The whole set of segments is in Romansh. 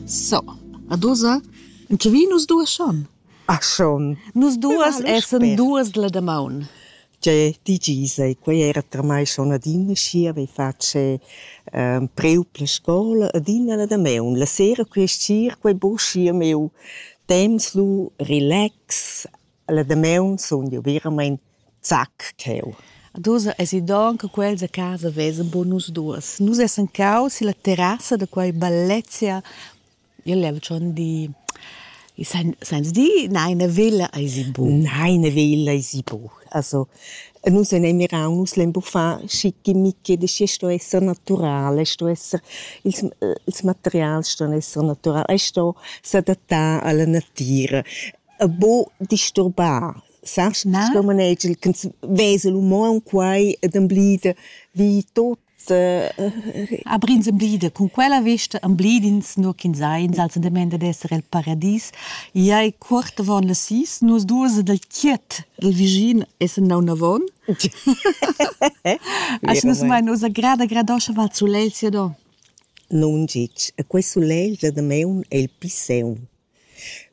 So, ad ussa, en tge vi nus duas schon? Ah schon. Nus duas essan duas la damaun. Tgei digis ei, quei era tramai schon adina schi avei fatg ehm, preu per la scola adina la damaun. La sera quei sir, quei buca schi a meu temps lu relax, La damaun sun jeu veramein zac cheu. Ad ussa esi donn che quels a casa vesan buca nus duas. Nus essan caus illa terrassa da quai bellezia. Io lev schon dir, sainz dir neina villa eisi buca. Neina villa eisi buca. Also nus en ei mirau, nus lein buca far schichimichi, da schi sto esser natural, sto esser ils, ils materials ston esser naturals, ei sto s'adattar alla natira. e buc disturbar, sast? Na. Sco manegel ch'ins vesa l'uman quai ed emblida vi tot. Abrins emblida cun quella vesta emblidins nur ch'ins ha in salzendament ad esser el paradis. Ei ei cuort avon las sis, nus duas ed el chiet, il vischin essen naun avon. Asch nus mein ussa grada gradoscha val sulel sia do. Non gitg, e quei sulel da damaun ei il pli seun.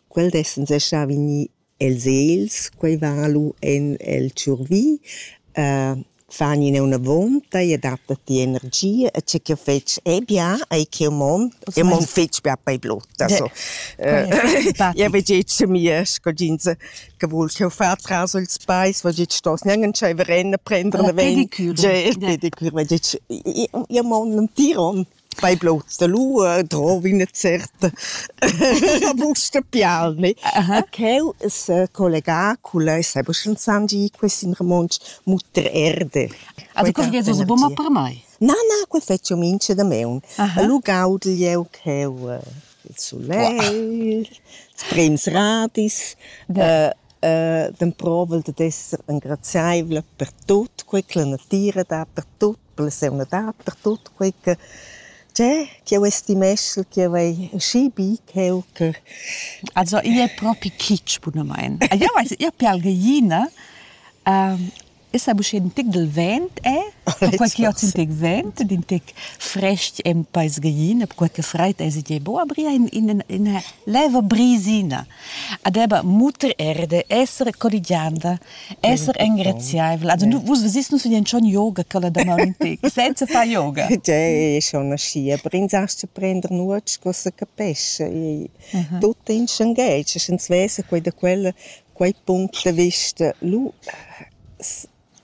Quel d'essan sè stà vegnì e'ls els, quai va lu en el tschurvi, fan ina un'avonta, i adatta ti energia e tge ch'jeu fetsch è bia, ei ch'jeu mon, jeu mon fetg bia per blotta so. Jeu vegg etg a mia scoginza che vul ch'jeu fa tras ils peis, vegg etg stos gnanc entscheiver en a prender la ven. Pedicure. Pedicure, vegg etg, jeu mon entir onn. Fai blouts da lua, drovi üna certa busta pialni. Ch'eu s'ha collegà culla e s'ha scienzandi quist in romontsch muttererde. Ah da quel viesu bun per mai? Na, na, quel fetsch eu mincha damaun. Lu gaudel jeu cheu il sulegl, sprems radis, dann provel dad esser engraziaivla per tut quella natira, dapertut. la seunadad per tut quei che tgè ch'jeu estimeschel ch'jeu hai schi bi ch'jeu che. Also igl è propi kitsch bunamain. Eu vais ir per algaina, esa buc schet ün tic dal vent è, perquai ch'jeu hoz ün tic vent ed ün tic fresc en peis gaina, perquai che fraid esa tgei bo, aber ia in in ina leva brisina. adeba muter erde esser corrigianda esser engraziaivel also nu vus vis nu sun schon yoga quella daman senza far yoga Dei, schon nascia brin sast zu prender nuots co se capesce tutto in schangel ins vesa quei da quella quei punct de vista lu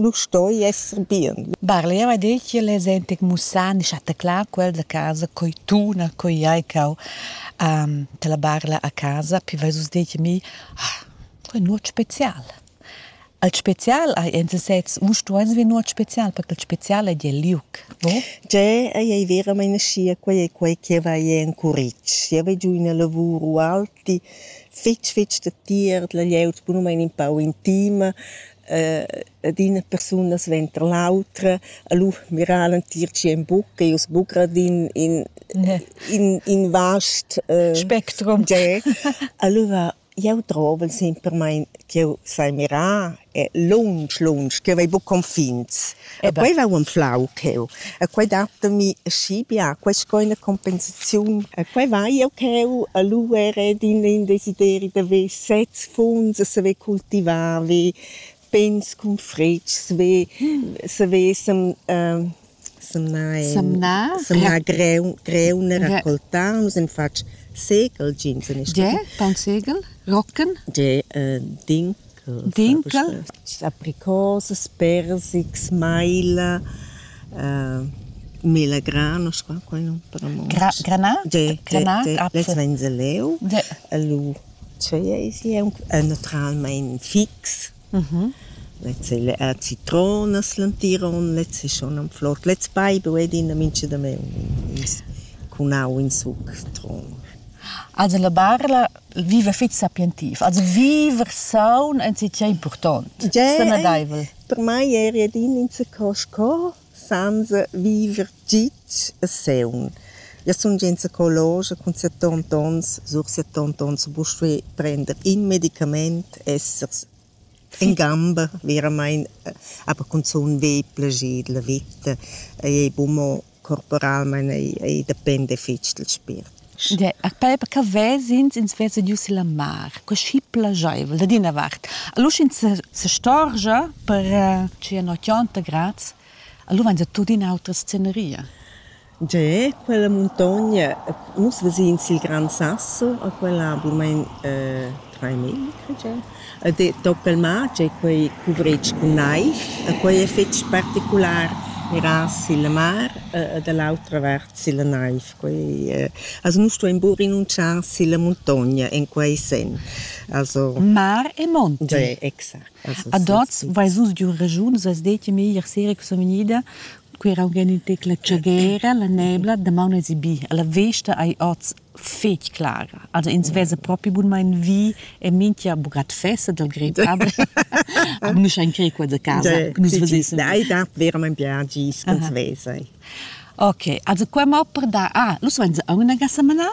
Lur stoi esser bien. Barleva ha detg ch'el es entg mussà e schataclà quel da casa coi tuna, coi hai cau ehm da la barla a casa. Pü vais vus dir a mi: «Ah, quai è nuot spezial». Il spezial hai en sesez, u stuais vi nuot spezial, perché il spezial ei il liuc, no? Tgè ei ei veramaing aschia, quei ei quei che va ei en curitg. Jeu vai giù in una lavur ualti fetg fetg da tier, la glieud bunumein in pau intima, ed ina persuna suenter l'autra e lu mirar l'entir tschien buc e uss buca d'in in in in vast spectrum. Allura jeu drovel sempermein ch'jeu sai mirar e lunsch lunsch, ch'jeu vai buc confins. E quei va unflau cheu. E quei datami schi bia, quei sco ina compensaziun. E quei vai jeu cheu a luer ed in, in desideri da ver sez funs e saver cultivar, ver pens cun fretgs, ver, saver sem, uh, semnar, semnar, semnar greun, greun e raccoltar. Nus hem fatg segel, jeans en il Ge, paun segel, rocken? Ge, uh, din Dinkel sa precosas, persics, maila, mela granos, qua quai nu premont. Granà? Lez vain se leu. Lu tschei eis i aunc naturalmein fix. Lez ei la citronas l'entiron, lez ei schon am flot. Lez baibu ed ina mincha da me cun au in suc tron. Also la barla viver fitg sapientiv, also viver saun ensi tgei important. Tgei per mai eri ed in insaco sco senza viver gitg e seun. Io sun gia insacologia cun 70 ons, sur 70 ons, buc stuer prender in medicament, essers In gamber veramaing, aber cunzun vegl plascher dalla veta ei buc mo corporalmein, ei ei dependa fetg dal spiert. Per per che ves'ins, ins vesa giu silla mar, cuschi plascheivel dad ina vart. Allura sch'ins se sestorgia per tschient otg grads, allura vain se tuttina autra sceneria. Tgei è quella muntogna? Nus ves'ins il Gran Sassel, a quella ha buca trais miglia, cred jeu. Ed toc il mar, tgei quei cuvretg cun naiv. E quei ei fetg particular miras silla mar e da l'autra vart silla naiv. Quei ei, also nus stuein buca renunzchar silla muntogna en quei senn. Also Mar e monti. Tgei, exact. Also, Ad oz veis vus giu regiun, vus veis detg il meglier sera che so vegnida Quei era aunc ina tecla tschagera, la nebla, damaun esi bi. E la vesta ei oz fetg clara. Also ins vesa propi bunmein vi e mintga buccat fessa dal grep aber. Nus ein crei qua da casa. Nus vesessen. Ei dat verament bien gis cun vesa. Ok, also qua mo per dar. Ah, lu vein se aunc una gassa manar?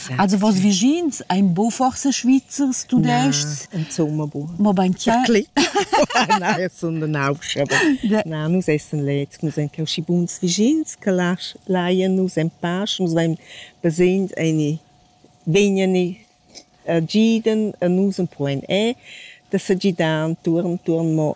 Also was vischins ein bo forse Schweizers Tudescs insomma bo ma bein tier Nein, sondern auch aber nein, nous essen letzt nous sind kein buns vischins che lasch leien nous ein pasch nous wenn besehen eine wenige äh, giden e nus un po en e da se gidan turn turn mo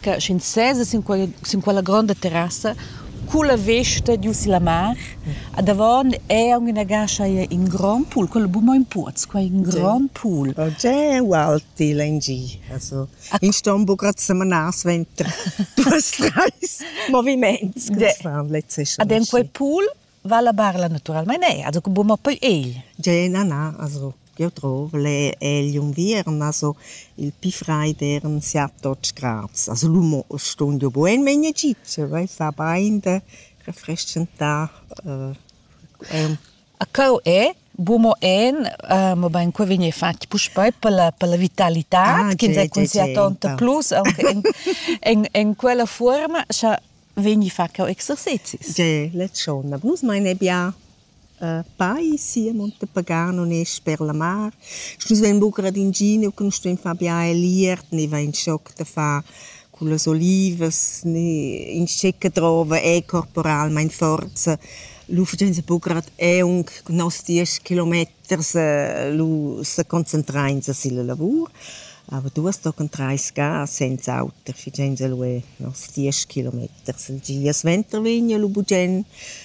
che sch'ins sesa sin quella, sin quella gronda terrassa culla vesta giu silla mar a davon è aunc ina gascha in grand pool quello bu mo in puoz quei in grand pool oh, già ualti lengi also in ston bu grad semanas venter duas treis moviments ad en quei pool va la barla naturalmein ei, also che buca mo poi egl. Gei, na, na, also jeu trov le egl unviern, also il pi freid eran siat otg grads. Also lu mo stond jeu bugen megne gitse, vai fa bein de refrestgentar eh, A cau è, bu mo en, uh, mobain qua vegn fatg puspei per la, per la vitalità, ah, che ins ha cun sia tonta plus, anche in, in, in quella forma, scha vegni fa cheu exercezis. Ge, la tschona. Nus mein ebia uh, pai sia Monte Pagano ne sper la mar. Nus vein buca ad inginiu che nus stuein far bia eliert, ne vein schoc da far con las olivas, ne in scecca drova è corporalmein forza. Lu fagein se buca ad eung cun nos diesch kilometers Vers lu seconcentrainsa silla lavur. Aber du hast tochen trais ga senza auter, figein se lu e nos diesch kilometers. Il gia suenter vegn lu bugen.